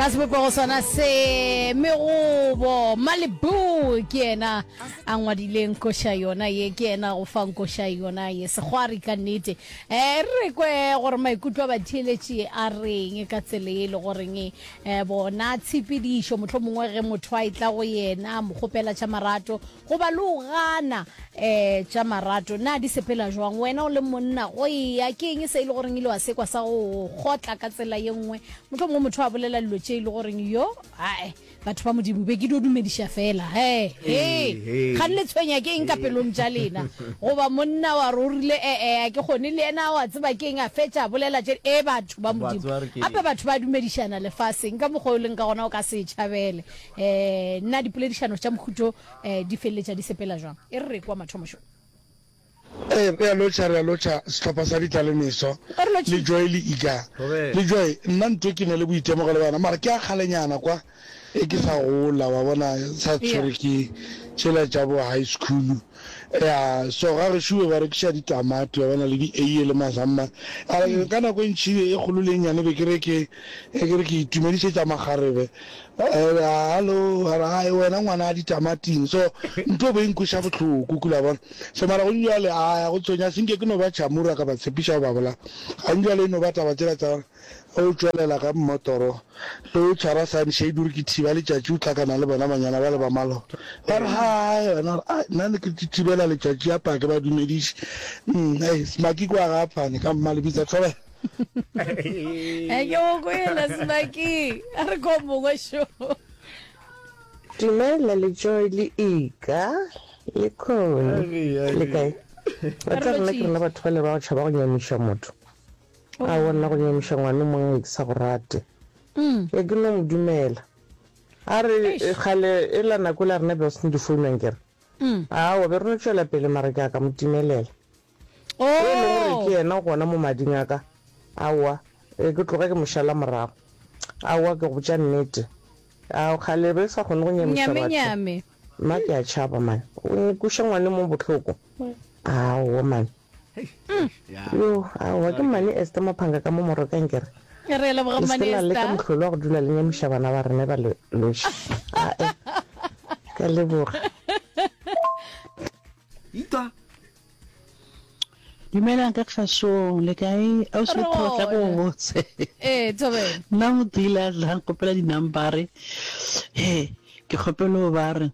ka sebopego sona se megobo malibu ke yena a ngwadileng koša yona ye ke yena go fang koša yona ye segwari ka nnete um re kwe gore maikutlo a batheeletši a reng ka tsele e le goreng um bona tshepedišo mohlho mongwe ge motho a e tla go yena mokgopela tša marato Goba le o gana. E, tša marato, na di sepela jwang? Wena o le monna, go eya, ke eng se e le goreng ile wa sekwa sa go go kgotla ka tsela ye nngwe? Mohlomongwe motho a bolela dilo tše e le goreng, Yo, ae, batho ba Modimo, be ke dio dumediša feela. He, he, kgane le tshwenya ke eng ka pelong tša lena? Goba monna wa re o rile, E-e, ga ke kgone. Le yena, o a tseba ke eng, a fetša a bolela tše. E, batho ba Modimo! Gape batho ba dumedišana lefaseng ka mokgwa o leng ka gona o ka se e tšhabele. um na dipoledišano tša mohuto um di feleletša di sepela jwang e re re kwa mathomošo Ee, re a lotšha, re a lotšha sehlopha sa ditlalemeso le Joy le Iga. Le Joy, nna ntwe ke ne le boitemogelo le wena, mara ke a kgalenyana kwa e ke sa gola, wa bona, sa tshwere ke tšela tša bo high school. Ea, so ga gešo be ba rekiša ditamati, wa bona, le di-aie le mazamma. A re, ka nako e ntši e kgolo le e nnyane be ke re ke, ke re ke itumedišetša makgarebe, Hallo, a re, Hai, wena ngwana a ditamating. So, ntho bo e nkweša bohloko, kula bona. So, mara gong bjale, a ya go tsonya, se nke ke no ba chamura ka ba tshepiša go ba bolaya. Gong bjale e no ba taba tsela tsa gore o tšwelela ka mmotoro, le o tshwara sunshade, o re ke thiba letšatši, o hlakana le bona banyana bale ba maloba. Ba re, Hai, wena, a re, Nna ne ke thibela letšatši, yapa, ha ke ba dumediše. Umm, hei, Smakiko a ga a phane, ka mma le bitsa, thobela. eke o kwela sebakeng a re ko mongwe šo dumela le joy le ika le kone le kae ba tsa rena ke rena batho ba le ba go tšhaba go nyamiša motho oh. a wonna go nyamiša ngwane o mongwe ke sa go rate mm. e ke no mo dumela a re kgale e la nako la rena be o sene difounang kere mm. a wa be reno tšwela pele mara ke a ka mo timelela e lego gore ke yena gona mo mading a ka, aowa, ee, ke tloge ke mo šala morago. Aowa, ke go botša nnete, a kgale re sa kgone go nyamiša batho. Mma, ke a tšhaba, man, o nkuša ngwane mo bohloko. Aowa, man. Yo, aowa, ke mmane Esther Maphanga ka mo Morokeng, ke re, leseke la leka mohlolo wa go dula le nyamiša bana ba rena ba le noši. A-e, ke a leboga. Eupša dumelang ka kgasong le kae ausi kgotla go botse ee tobe nna modila tla nkopela dinambare he ke kgopelo ba re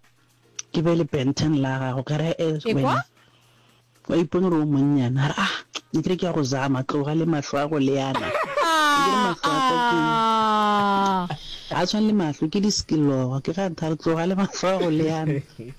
ke be le benten la gago ka re e wena wa ipone gore o monnyana a re ah ne ke re ke ya go zama tloga le mahlo a go leana a tshwane le mahlo ke di-skilloga ke ga ntha re tloga le mahlo a go leana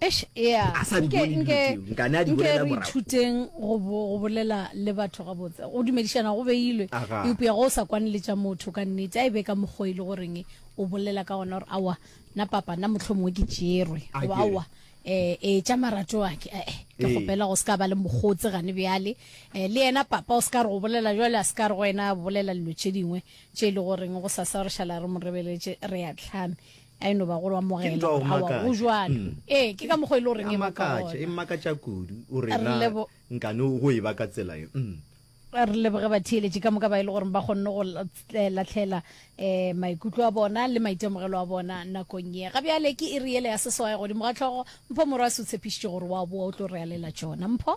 Eish, ea, A sa di nke, bone dilo nke, tšeo, nka ne a di nke bolela re morago. ithuteng go bo, go bolela le batho gabotse. Go dumedišana go beilwe, Aga. eupša ge o sa kwane le tša motho ka nnete, a e be ka mokgo e le go reng o bolela ka gona gore, Aowa, nna papa, nna mohlomongwe ke tšerwe, A goba, kere. Aowa, eh, eh, tša marato a ke, eh-eh, ke Ee. kgopela go se ka ba le mokgotse gane bjale. Eh, le yena papa o se ka re go bolela bjale, a se ka re go wena bolela dilo tše dingwe tše e le go reng gosasa re šala re mo rebeletše, re ya tlhame. a e no ba go lo amogela go jwalo mm. ee ke ka mokgwa e le goreng e makatša e makatša kudu o rena nkane go e ba ka tsela e mm. re leboge batheeletše ka moka ba e le goreng ba kgonne go eh, latlhela um maikutlo a bona le maitemogelo a bona nakong ye ga bjale ke e re ele ya seswae godimo ga tlhogo mpho morwa se o tshepišitše gore wa boa o tlo re alela tsona mpho